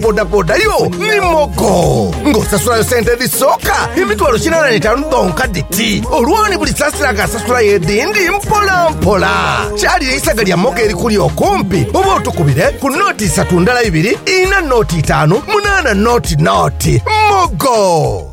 bodaboda yo ni mogo ng'osasulayo sente edhisooka emitwalo kinaana n'etaanu dhonka dhiti. Olwoni buli saasira nga asasulayo edhindi mpolampola. Kyalire eisaga lya mogo erikuli okumpi oba otukubire ku nooti isatu ndala ibiri, ina nooti itaanu, munaana nooti nooti. Mogo!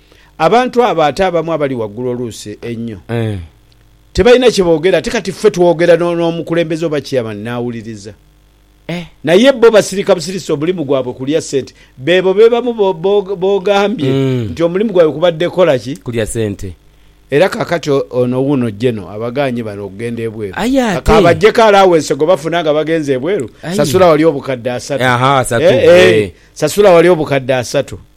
Abantu abo ate abamu abali waggulu oluusi einho tebalina kye boogera. Ate kati ffe twogera n'omukulembeze oba chairman n'awuliriza. Naye bbo basirika busirisi omulimu gwabwe kulya ssente. Beebo be bamu b'ogambye nti omulimu gwabwe kubadde kukola ki? Kulya ssente. Era kaakati ono wuuno General abagaanye bano okugenda ebweru. Kabaggyeko alawense gwe bafuna nga bagenze ebweru, sasula wali obukadde asatu. Eeh sasula wali obukadde asatu.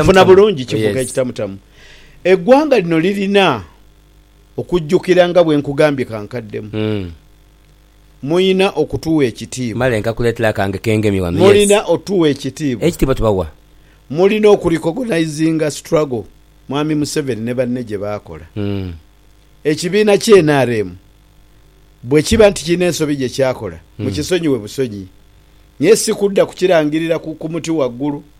Onfuna bulungi? Kifuuka ekitamutamu. Eggwanga lino lirina okujjukira nga bwe nkugambye ka nkaddemu, mulina okutuwa ekitiibwa, mulina otuwa ekitiibwa, mulina okurikogonayizinga struggle Mwami Museveni ne banne gye baakola. Ekibiina ki nrm bwe kiba nti kirina ensobi gye kyakola, mukisonyiwe busonyi, naye si kudda kukirangirira ku muti waggulu.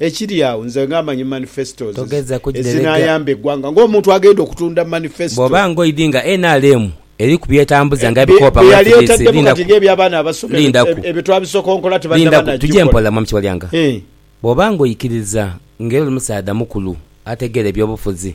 Ekiri agho nze nga manyi manifestos ezinayamba egwanga nga omuntu agenda okutunda manifesto. Bwoba nga oidhi nga nrm eri kubyetambuza nga ebikoopa mwekiri isi lindaku lindaku tuje mpola Mwami Kiwalyanga bwoba nga oikiriza nga era oli musaadha mukulu ategeera ebyobufuzi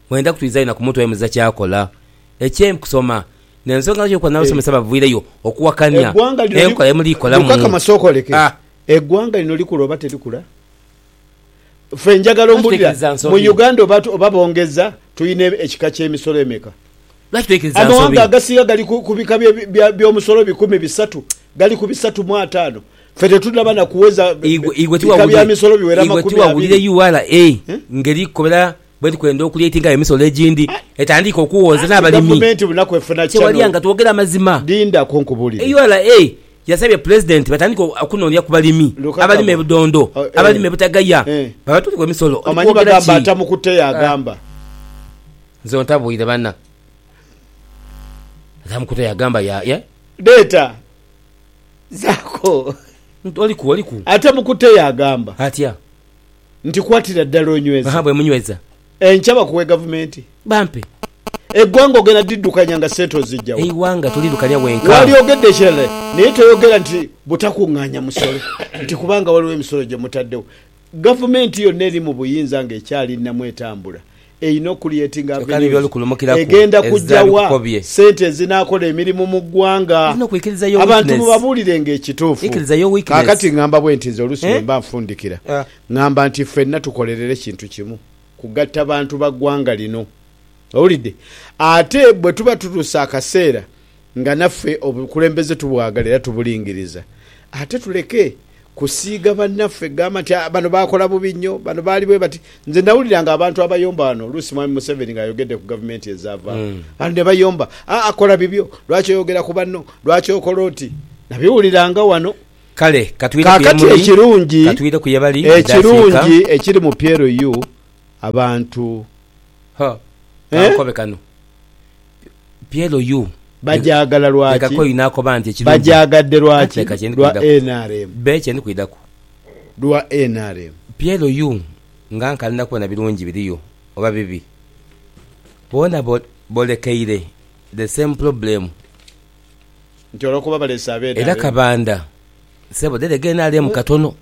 Mwenda kutuliza inha ku muntu ayemeziza ky'akola ekye kusoma n'ensonga lwaki okuba n'abasomesa baviireyo okuwakania enkola ye muli kolamu. Eggwanga lino likula oba terikula? Ffe njagala ombulira mu Uganda oba bongeza tulina ekika ky'emisolo emeka? Amawanga agasinga gali ku bika by'omusolo bikumi bisatu gali ku bisatu mu ataano ffe tetunaba na kuweza bika bya misolo biwera makumi abiri. Igwe tiwawulire ura ngeri kukobera Bwe tukwenda okuleetinga awo emisolo egindi, etandiika okuwooza n'abalimi. Kyewalya nga twogera amazima, ura yasabye Pulezidenti batandike okunoonia ku balimi abalima ebidondo, abalima ebitagaya babatuuleku emisolo. Oli kwogera ki? Nze ontabuire bana. Ntamukutte yagamba ye. Dheeta zaako. Nti oli ku, oli ku. Ntamukutte yagamba. Atya? nti kwatira ddala onyweze. Aha bwe munyweza. Enkya bakuwe gavumenti. Bampe. Eggwanga ogenda diddukanya nga ssente oziggya wa? Eighanga toliduka lya wenka. Walyogedde ekirala naye toyogera nti butakung'anya musolo nti kubanga waliwo emisolo gye mutaddewo. Gavumenti yonna eri mu buyinza ng'ekyali nnamu etambula. einho Creating Avenues egenda kujja wa sente ezinaakola emirimu mu ggwanga abantu mubabuulirenga ekituufu. Kaakati ngamba bwenti nze oluusi bwe mba nfundikira ngamba nti ffenna tukolerere kintu kimu, kugatta bantu ba ggwanga lino. Owulidde? Ate bwe tuba tutuuse akaseera Nga naffe obukulembeze tubwagala era tubulingiriza, ate tuleke kusiiga banaffe gamba nti aa bano baakola bubi nnyo, bano baali bwe bati. Nze nawuliranga abantu abayomba wano oluusi Mwami Museveni ng'ayogedde ku gavumenti ezaavaawo wano ne bayomba, aa kola bibyo, lwaki oyogera ku banno, lwaki okola oti. Nabiwuliranga wano. Kale katwire ku ye Kaakati muli, ekirungi, katwire ku ye bali, bidde afiika. ekirungi ekiri mu PLU abantu, Hoo, eh? kankobe kano. PLU Bagyagala lwaki? Bagyagadde lwaki? Lwa nrm. Lwa nrm. PLU nga nkalinda kubona birungi biriyo oba bibi. Boona bolekeire the same problem. Nti olwokuba balese aba nrm. Era Kabanda sebo dherega nrm katono.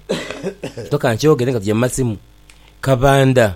Toka nkyogere nga tugya mu masimu. Kabanda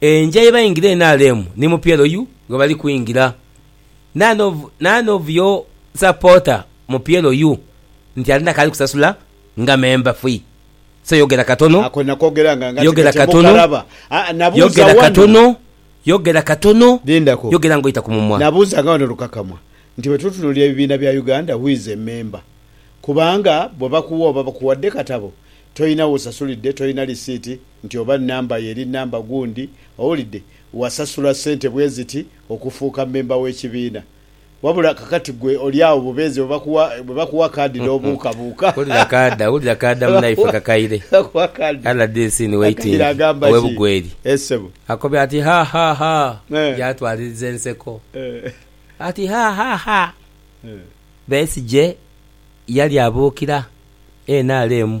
enja ye baingira NRM ni mupyelo yu ghe bali kwingira. None of none of your supporter mupyelo yu nti alina kaali kusasula nga member fee so yogera katono, Ako nakogera nga ngati yogera kati katono, mukaraba. Aa, nabuuza yogera wano. katono, yogera katono, Lindako. yogera nga oita ku mumwa. Nabuuzanga wano lukakamwa nti bwe tutunuulira ebibiina bya Uganda who is a member? Kubanga bwe bakuwa oba bakuwadde katabo tolina w'osasulidde, tolina lisiiti. Nti oba nnamba yo eri nnamba gundi, owulidde, wasasula ssente bwe ziti okufuuka mmemba w'ekibiina. Wabula kakati ggwe oli agho bubeezi bwe bakuwa, bwe bakuwa kaadi n'obuukabuuka. Wulira kaada, wulira kaada munaife Kakaire, Bakuwa kaadi. Rdc ni Kakaire waiting agamba ow'e ki? Bugweri. Eeh ssebo. Akobye ati, Ha, ha, ha! Eeh. Yaatwaliriza enseko. Eeh. Ati, Ha, ha, ha! Eeh. Besigye yali abuukira nrm.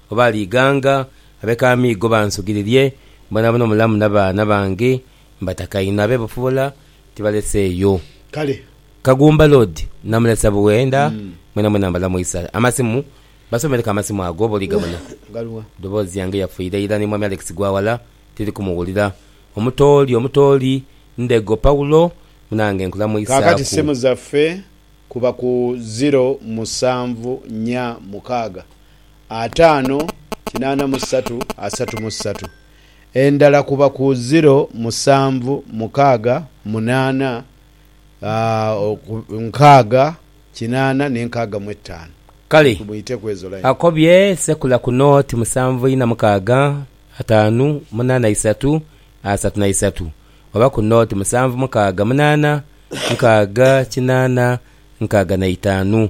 Oba alighanga ab'ekamiigo bansugiririe, boonaboona omulamu n'abaana bange mbataka inho, abe Bufubola tibaleseeyo. Kale. Kagumba Lord namulesa Buwenda, mwenamwena mbalamu isa. Amasimu, Basomereku amasimu ago oba oligabona. Ghaluwa? Edoboozi yange yafiira ira ni Mwami Alex Gwawala tiri kumuwulira. Omutooli, Omutooli, Ndego Paulo munange Kaakati nkulamuisaaku. simu zaffe kuba ku ziro musanvu nya mukaaga ataano kinaana mu satu asatu mu satu, endala kuba ku ziro musanvu mukaaga munaana nkaaga kinaana n'enkaaga mu ettaano. Kale akobye sekula ku nooti musanvu ina mukaaga ataanu munaana isatu asatu na isatu, oba ku nooti musanvu mukaaga munaana nkaaga kinaana nkaaga na itaanu,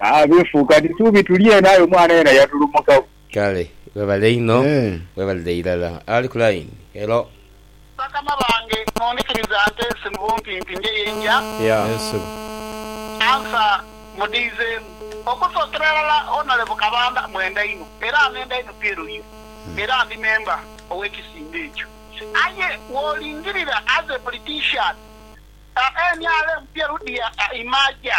Abeefu kati suubi tuli eno aye omwana yena yatulumukagho. Kale webale inho webalire irala. Ali ku line, hello. Bakama bange mundhikiriza nteese mu bumpimpi nje yenja. Answer mudhiizeemu. Okusookera irala Honourable Kabanda mwenda inho era nenda inho PLU era ndi member ow'ekisinde ekyo aye wolingirira as a politician nrm PLU dia imaja.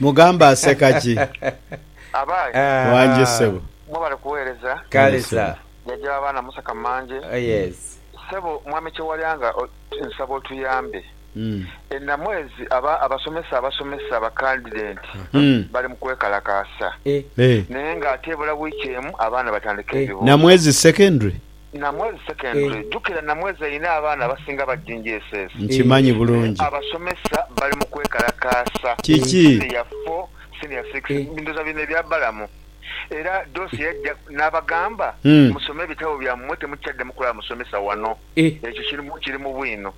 Mugamba aseka ki? Abaye. Wangi ssebo. Mwebale kuwereza. Kale sa. Jajja wa baana Musa Kamanje. Oh yes. Ssebo Mwami Kyewalyanga nsaba otuyambe. E Namwezi aba abasomesa abasomesa ba candident bali mu kwekalakaasa naye nga ate ebula wiiki emu abaana batandika ebibuuzo. Namwezi secondary? Namwezi Secondary, jukira Namwezi alina abaana abasinga ba GNGSS. Nkimanyi bulungi. Abasomesa bali mu kwekalakaasa. Kiki? Senior four, senior six, ndhoza bino ebya Balamu. Era Doss yajja n'abagamba, Musome ebitabo byammwe, temukyaddamu kulaba musomesa wano. Ekyo kiri mu bwino.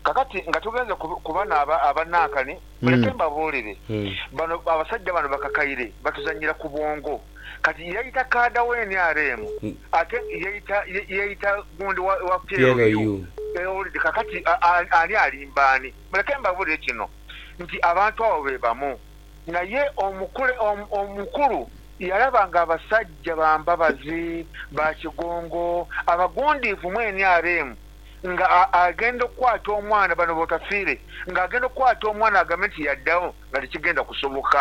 Kakati nga tugenze ku bano aba Nankani, muleke mbabuulire. Bano abasajja bano bakakaire, batuzannyira ku bwongo. Kati yaita kaada wa nrm ate yaita yaita gundi wa wa PLU ewulide kakati ani alimba ani? Muleke mbabulire kino nti abantu abo bebamu naye omukule omukulu yalaba nga abasajja ba Mbabazi, ba Kigongo abagundiivu mu nrm nga agenda okukwata omwana bano botafiire nga agenda okukwata omwana agambe nti yadagho nga tekigenda kusoboka.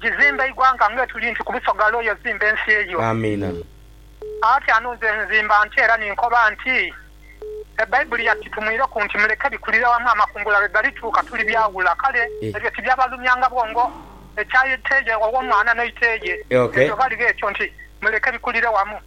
Gizimbe eighanga nga etuli nti ku bisoga lwo yozimba ensi eyo. Amiina. Ati anu nze nzimba nti era ni nkoba nti, Ebaibuli yatitumwireku nti, Muleke bikulire wamu amakungula lwe galituuka tuli byaghula. Kale ebyo tibyabalumyanga bwongo ekya ite ye ow'omwana n'eite ye. Ebyo ghaligho ekyo nti, Muleke bikulire wamu.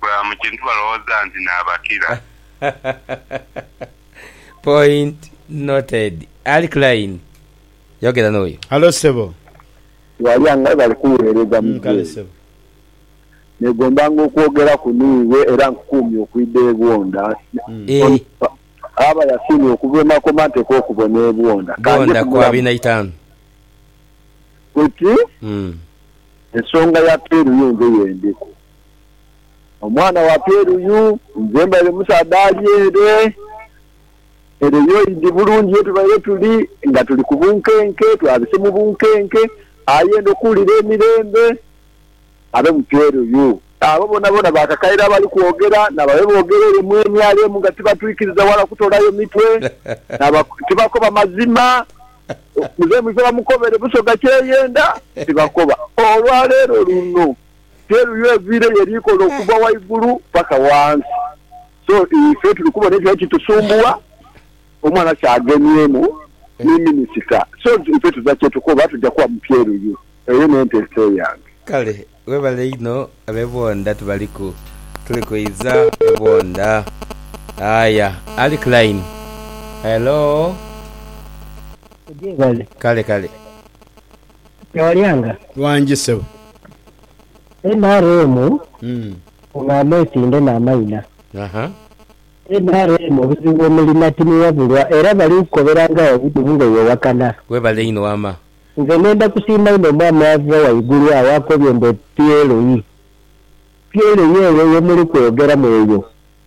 Bwebaba mu kintu balowooza nti naabakira. Point noted. Ali Klein, yogera n'oyo. Halo ssebo. Walya nga bali kuweereza Muzei. Negombanga okwogeraku n'iwe era nkukuumye okwidha e Bwonda. Aba yasiimye okuva e Makoma nteekwa okubona e Bwonda. Bwonda ku abiri na itaanu. Kati ensonga ya peeru yo nze y'endiku. Omwana wa Peru yu, nze mbaire musaadha ali ere. Ere yo idi bulungi ye tubaire tuli, nga tuli ku bunkenke, twabise mu bunkenke. Aye ndhokuwulira emirembe abe mu Peru yu. Abo boonaboona baakakaire abali kwogera, n'abaabe boogera ere mu emyalo emu nga tibatwikiriza wala kutoolayo mitwe, tibakoba mazima. Muzei Mwiza bamukobere Busoga kyeyenda, tibakoba. Olwa leero luno. Teru yo eviira ye likola okuva waigulu paka wansi so ife tuli kubona ekyo ekitusumbuwa omwana kyagemyemu ni minister so ife tuza kyetukoba tuja kuwa mupyeruyu eyo nenteesa eyange. Kale webale inho abe Bwondha tubaliku tuli kwidha e Bwondha aya ali ku line hello. Kale kale. Kyawalyanga. Wangi sebo. Nrm ono amwesinde namaina. Aha. Nrm obuzibu bwemulina timuwabulwa era bali kukobera nga wagudumu nga yewakana. Webale inho wama. Nze ngenda kusiima inho omwami ava waigulu agho akobye mbu e PLE. PLE eyo yemuli kweyogeramu eyo.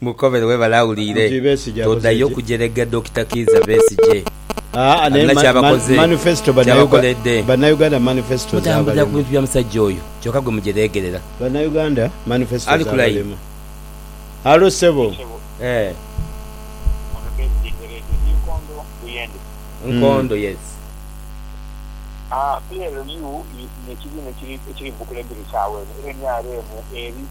Mukobere webale awulire todayo kujerega Dokita Kiiza Besigye alina kyabakoze kyabakoledde mutambulira kubintu bya musajja oyo kyoka gwe mujeregerera Ali ku line. Halo sebo. Nkondo yes.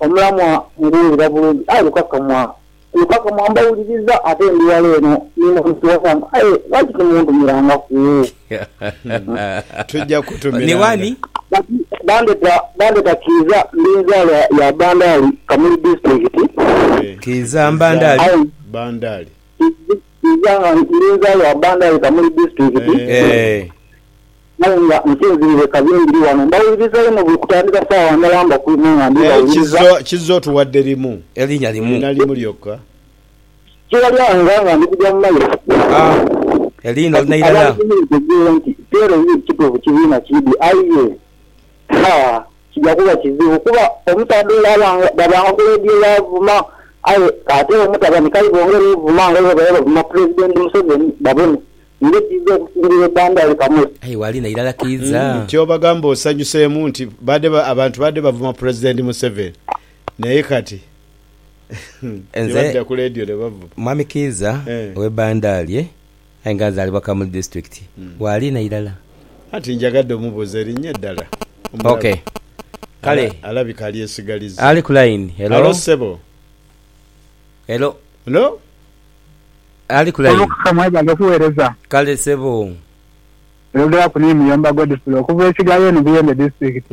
Omulamwa nguwulira bulungi aye lukakamwa lukakamwa mbawuliriza ate ndi wala eno ni muntu wasanvu aye lwaki timuntumirangaku? Tujja kukutumiranga. Bandeta bandeta Kiiza ndi nzalwa ya Bandali Kamuli Disitulikiti. Kiiza Mbandali. Bandali. Kiiza nga ndi nzalwa Bandali Kamuli Disitulikiti. Eeh. Aye nga nsinziire ka bino biri ghano, mbawuliriza inho buli kutandika saawa ndala mba ku ino nga Naye ndibawuliriza. kizza, kizza otuwadde limu, Elinya limu. liina limu lyokka. Kigha lyange nga ndi kugya mu maiso. A. Eliina olina Kati irala? abantu muli mutegeere nti Piero ye kituufu kibiina kiidhi, aye ye? Ha! Kija kuba kizibu, kuba omusaadha ole aba nga baba nga Kuledio yaavuma, aye k'ate omutabani k'aibongere ovuma nga bwe babaire bavuma Pulezidenti Museveni, babone. Ndhi kiidha okusingira ekandaali kamuli. Aye waalina irala kiidha. Nti obagamba osanyuseemu nti baadhe abantu baadhe bavuma Pulezidenti Museveni naye kati ni Nze badda ku leediyo ne bavuma. Mwami Kiiza Eh. ow'e Bandaarie aye nga nzaalibwa Kamuli Disitulikiti. Waalina irala? Anti njagadde omubuuza erinnya eddala. Ok. Omulabe. Kale. Ala- Alabika alyesigalizza. Ali ku layini. Helo? Halo ssebo. Helo? Helo? Ali ku line. Omukuka mwebale okuwereza. Kale sebo. Oyogeraku ni Muyomba Godfrey okuva e Kigaaya eno Buyende District.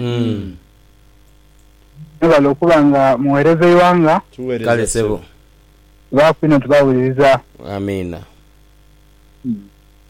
Mwebale okuba nga muwereza eighanga. Kale sebo. Tubaaku inho tubawuliriza. Amiina.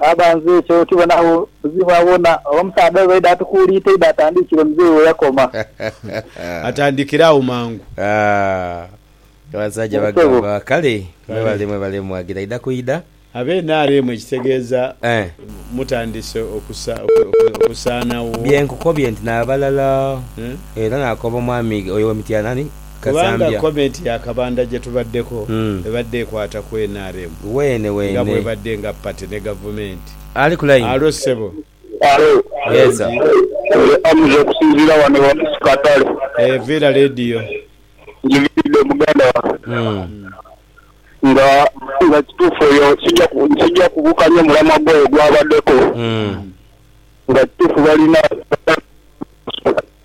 Baba nze ekyo tibonagho buzibu awona oba omusaadha oyo bwaidha atukuuliita idho atandiikire muzei we yakoma. Atandikire agho mangu. Aah abasajja bagamba kale. Mwebale mwebale mwagira idha ku idha. Abe nrm ekitegeeza mutandise okusaanagho? Bye nkukobye nti n'abalala era nakoba omwami oyo owe Mityana ani? Kubanga comment ya Kabanda gyetubaddeko ebadde ekwata ku nrm nga bwebadde nga party ne gavumenti. Alo ssebo. Alo. Mulungi. Nze Hamza okusinziira wano ewa Musi Katale. Eeh viira leediyo. Njiviiridde muganda wange. Nga nga kituufu oyo sija sija kubukanya omulamwa gwe oyo gwabaddeko. Nga kituufu balina.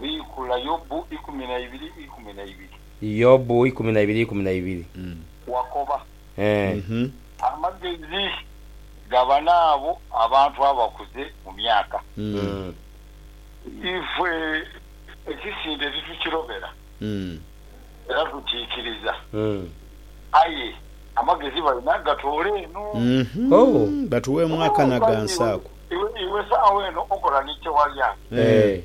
Biikula Yobu ikumi na ibiri ikumi na ibiri. Yobu ikumi na ibiri ikumi na ibiri. Wakoba. Ee. Amagezi gabana abo abantu abakuze mu myaka. Ife ekisinde titukirobera, era tukiikiriza, aye amagezi balina gatoole eno. Hoo, batuweemu akana gansi ako. Iwe saagho eno okola ni kyewa lyange.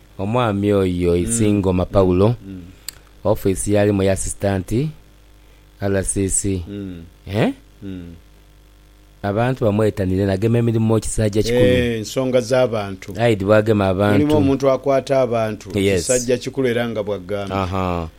Omwami oyo Isingoma Paulo, ofiisi y'alimu ya Asisitanti RCC. Abantu bamwetanire nagema emirimo kisajja kikulu. Ensonga z'abantu. Aidhi bwagema abantu. Mulimu omuntu akwata abantu kisajja kikulu era nga bwagambye.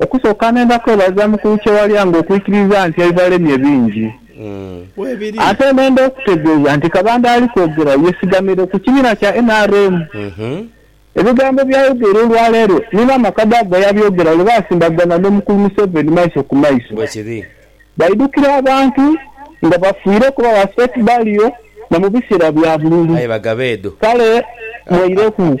Okusooka ngenda kwebaza Mukulu Kyewalya nga okwikiriza nti aivalemye bingi. Ate nenda okutegeeza nti Kabanda ali kwogera yesigamire ku kibiina kya nrm. Ebigambo byayogera olwaleero ni maama Kadaga yabyogera lwe baasimbagana n'Omukulu Museveni maiso ku maiso. Baidhukira abantu nga bafiire kuba ba State baliyo na mu biseera bya bululu. Kale mweireku.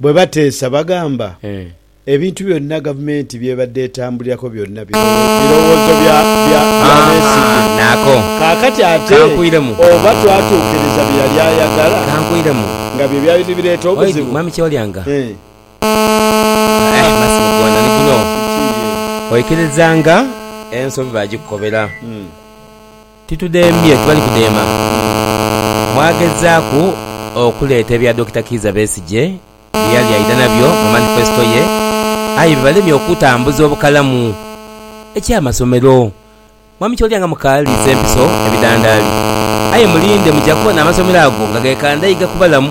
Bwe bateesa bagamba ebintu byonna gavumenti by'ebadde etambulirako byonna birowoozo bya Besigye. Kaakati ate oba twatuukiriza bye yali ayagala nga bye byali nibireeta obuzibu? Titudhembye, tibali kudheema. Mwagezaaku okuleeta ebya Dokita Kiiza Besigye bye yali aidha nabyo mu manifesto ye aye bibalemye okutambuza obukalamu. Eky'amasomero, Mwami Kyolya nga mukaaliisa empiso ebidhandaali. Aye mulinde muja kubona amasomero ago nga gekandaiga ku balamu.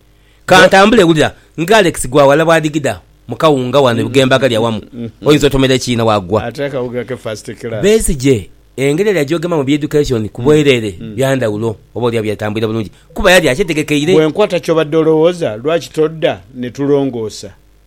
Ka ntambule wulira nga Alex Gwawala bw'adigida mu kawunga wano e Bugembe agali awamu oyinza otomera ekiina waagwa. Besigye engeri yali agyogemamu ebya Education ku bwereere bya ndhawulo oboolyawo byalitambwira bulungi kuba yali akyetegekeire. Bw'enkwata ky'obadde olowooza lwaki todda ne tulongoosa?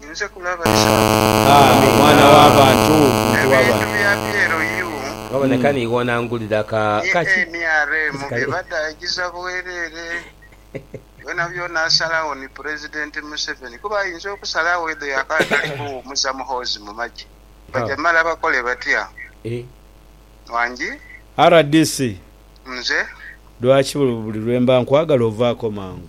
Ninze kulaba Isaaka. Ah, mwana wa bantu, muntu wa bantu. Ebintu bya byeeru yuu. Ghaboneka niiwe onangulira ka, ka ki? Ni nrm bye badaagiza bwerere. Byonabyona asalagho ni Pulezidenti Museveni kuba ayinza okusalagho edho yakaba atali kuwumuza Muhoozi mu magye. Bajamala bakole batya? Wangi? Rdc, Nze? lwaki buli lwe mba nkwagala ovaako mangu?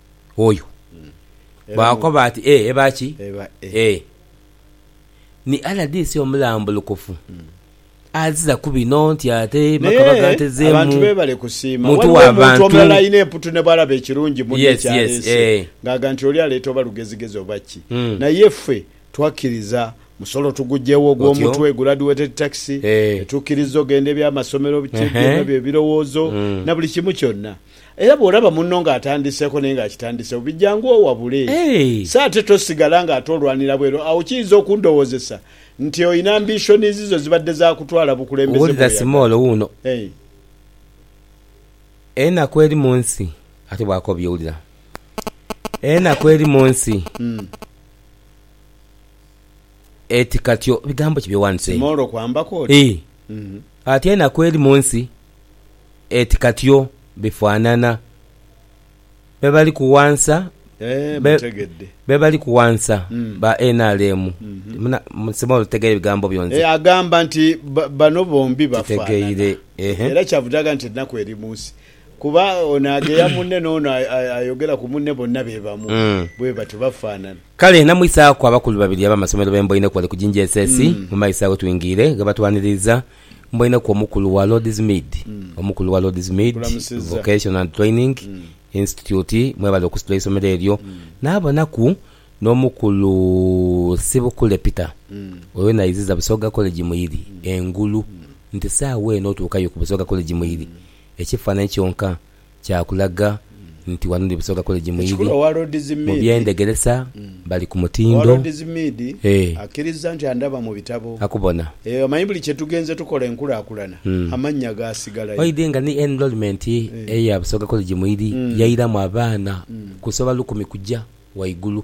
oyo. Baakoba ati, Ee, eba ki? Ee, ni RDC omulambulukufu. Azira ku bino nti ate Makabaga antezeemu muntu wa bantu. Twakkiriza musolo tuguggyewo ogw'omutwe, graduated tax, ne tukkiriza ogenda eby'amasomero, biki byonna bye birowoozo na buli kimu kyonna. Era bw'olaba munno ng'atandiseeko naye ng'akitandiseewo, bi jangu owabule. So ate tosigala ng'ate olwanira bweru. Agho kiyinza okundowoozesa nti olina ambishonizi zo zibadde za kutwala bukulembeze bw'oyagala. Enaku eri mu nsi. Ate bwakobye, wulira. Enaku eri mu nsi. Eti katyo bigambo ki by'owandise? Simoolo kwambaku oti? Ati enaku eri mu nsi eti katyo bifaanana. Be bali kuwansa be bali kuwansa ba nrm. Simo otegeire bigambo byo nze. Agamba nti bano bombi bafaanana era kyavudde aga nti enaku eri mu nsi Kuba ono agheya munne n'ono ayogera ku munne bonna be bamu bwe batyo, bafaanana. Kale namwisaaku abakulu babiri ab'amasomero be mboineku ghale ku GNJSS mu maiso agho twingire ghebatwaniriiza. Mboineku omukulu wa Lord's Mead, omukulu wa Lord's Mead Vocational and Training Institute, mwebale okusitula eisomero eryo. Naabonaku n'omukulu Ssibukule Peter, oyo naiziza Busoga College Muiri engulu nti saagha eno otuukayo ku Busoga College Muiri. Ekifaananyi kyonka kya kulaga nti wano ndi Busoga College mu ibi. Mu by'endhegeresa bali ku mutindo. Ee. Akubona. Umm. Oidhi nga ni enrolment eya Busoga College mu ibi yairamu abaana kusoba lukumi kuja waigulu.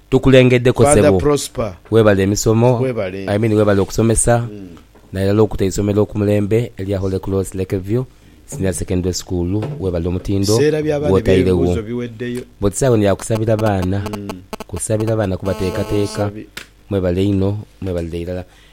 Tukulengedeko Father sebo. Prosper Webale emisomo. webale. I mean webale okusomesa nairala okuta eisomero ku mulembe elya Holy Cross Lake View Senior Secondary School. Webale omutindo Seera bya baana gwotairegho. eby'ebibuuzo biweddeyo. But sawa eno ya kusabira baana. Kusabira baana kubateekateeka. Sawa busabi. Mwebale inho. Mwebalire irala.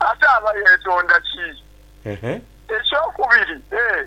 ate aba yeetonda ki? Eky'okubiri, e.